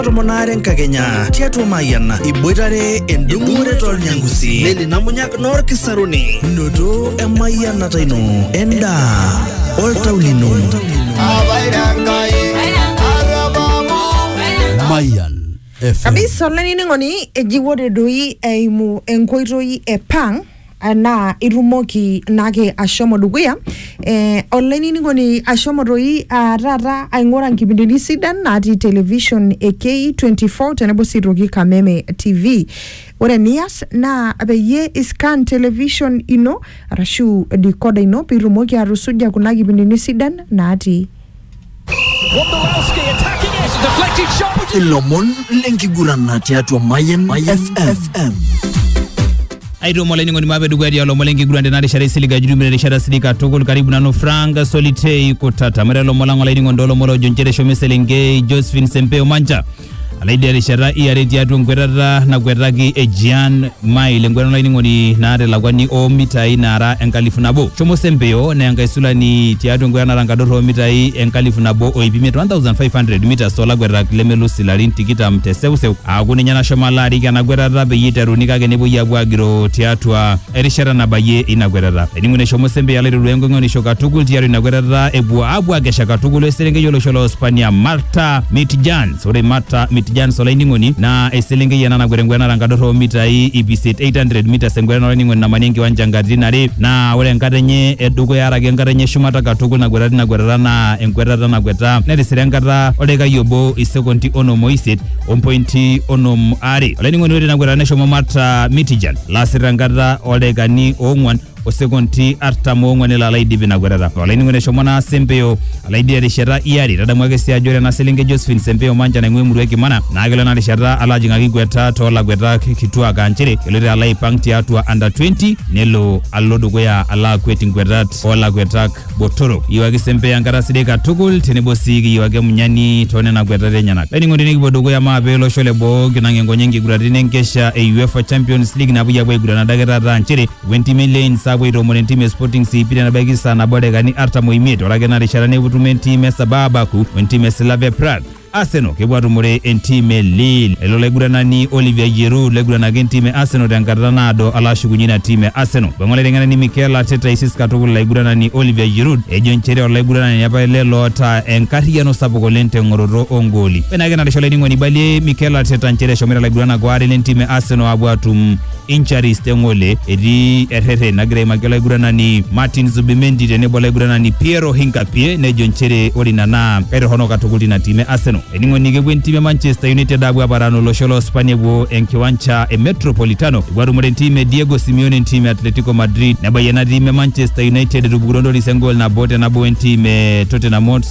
tomon aare enkakenya tiatua Mayian iboitare endung'ore tolnyangusi neli namunyak noorkisaruni noto emayianata ino endaa oltau lino Mayan FM. kabisa olainining'oni eji ore doi eimu enkoitoi e pang eh, naa itumoki naake ashomo dukuya eh, olainining'oni ashomo toi ah, taata aing'ura nkipindini sidan natii television e K24 tenebo sii toki Kameme TV ore eniyas naa peyie iscan television ino arashu decoder ino pitumoki atusuja kuna kipindini sidan natii Wondolowski attacking it. Deflected shot. ilomon lenkigurana tiatua Mayan FM. aitomo olainining'oni maape dukuya tialo lomon lenkiguran tena rishata isilig ajurumire erishata silig katukul karibu nanu frank solitei kutata mare lomon lang olainining'oni too lomon loojo nchere eshomo eselenkei josephine sempeo mancha Alaidia rishata iare tiatua enkwetata nakwetaki e Jean Mile enkwetata olainining'oni naata elakwani oo mitai naara enkalifu nabo. Shomo Sempio naa enkaisulani tiatua enkwetata naata enkadorr oo mitai enkalifu nabo o iip imiet, 1500 metres, too lakwetaka lemelus ilarin tikitam te seuseu. Aaku ninye nashomo alo arik ena kwetata peyie eiteruni kake nepuoi aapuo aagiroo tiatua erishata nabayie ina kwetata eningo neshomo sembe alo aiteru enkoing'onisho katukul tiatua ina kwetata epuo apuo akesha katukul eselenkei olosho loo Spania Marta Mitjans ore Marta Mitjans olainining'oni naa eselenkei ena nakwet enkwetata enkadorro oo mitai ip isiet 800 meters enkwetata olainining'oni namani enkiwanja inkatitin are naa ore enkata enye edukuya araki enkata enye eshumata katukul nakweta tina kwetata naa enkwetata nakweta netisira enkata oldaikai obo isekondi onom oisiet ompointi onom are olainining'oni ore tina kwetata neshomo Marta Mitjans lasita enkata oldaikani oong'uan osekonti artam oong'uan elo alo aidip ina kwetata olainining'oni eshomo naa sempeo alo aidip erishata iare tadamu ake sii ajo ore ena selenkei Josephine sempeo mancha naing'ua emurua e kimana naa kelo ena rishata alo ajing'aki kweta toolakwetak kituak aa nchere eloito alo aipang tiatua under 20 nelo alo dukuya alo akwet inkwetat oolakwetak botorok iyieu ake sempeya enkata sidai katukul tenebo sii kiyieu ake Munyani too nena kuetata enyenak. Laining'oni nikipuo dukuya mape olosho le boo kinang enkonye nkiguraritin enkesha e UEFA Champions League napuoi apuo aiguran adake taata aa nchere epuo entimi e Lens apuo aitoomon entim e Sporting CP tenebaiki saa nabo o dakikani artam o imiet ore ake ina rishata nepuo etumo entim e Sabah Baku o entim e Slavia Prague. Arsenal kepuo atumore entim e Lille. Elo olaiguranani Olivier Giroud laiguranaki entim e Arsenal tenkata naado alo ashukunye ina tim e Arsenal. Eipangu olaiteng'enani Mikel Arteta aisis katukul ilaiguranani Olivier Giroud ejo nchere olaiguranani apa ele loota enkarriyiano sapuk oleng teng'oroto oo ngooli. Ore naake enatisha olainining'oni eibalie Mikel Arteta nchere eshomoita ilaiguranak waare lentim e Arsenal aapuo aatum injuries te ng'ole etii errerren nagira aimaki olaiguranani Martin Zubimendi tenebo olaiguranani Piero Hinkapie nejo nchere ore ina naa kaitorrono katukul tina tim e Arsenal. Eningo ni kepuo entim e Manchester United apuo aparan olosho loo Spania epuo enkiwancha e Metropolitano epuo atumore entim e Diego Simeone entim e Atletico Madrid nebayie ena tim e Manchester United etupukutwo entoris engool nabo te nabo wentim e Tottenham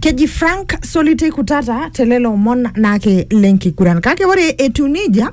Keji Frank Solitei Kutata te lelo omon naake le nkiguran. Kake ore etiu neija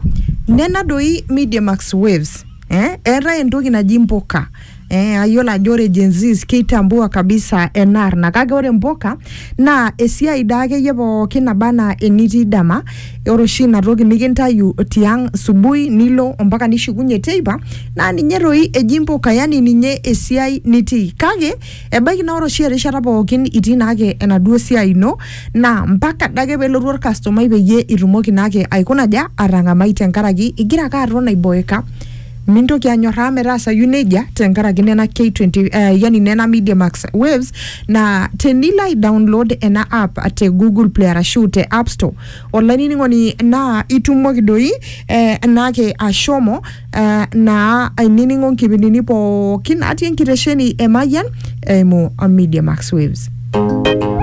nena doi Media Max Waves. Eh, eetae entoki naji mpuka. Eh, ayiolo ajo ore Gen Zs keitambua kabisa ena arna kake ore mpuka naa esiai daa akeyie pookin naba anaa enitii dama. Ore oshi ina toki nikintayu tiang subui nilo ompaka nishukunye teipa naa ninye doi eji mpuka yani ninye esiai nitii kake Ebaiki naa ore oshi erishata pookin itii naake enaduo siai ino naa mpaka adake pelotu orkastomai peyie itumoki naake aikuna aja atang'amai tenkaraki igira ake aton aiboeka mintoki anyorraa metaasayu nejia tenkaraki nena K20 eh, yani nena Media Max waves naa tenilo ai download ena app te Google Play arashu te App Store olainining'oni naa itumoki doi eh, naake ashomo Uh, naa ainining'o nkipindini pookin natii enkitesheni e Mayian eimu Media Max Waves.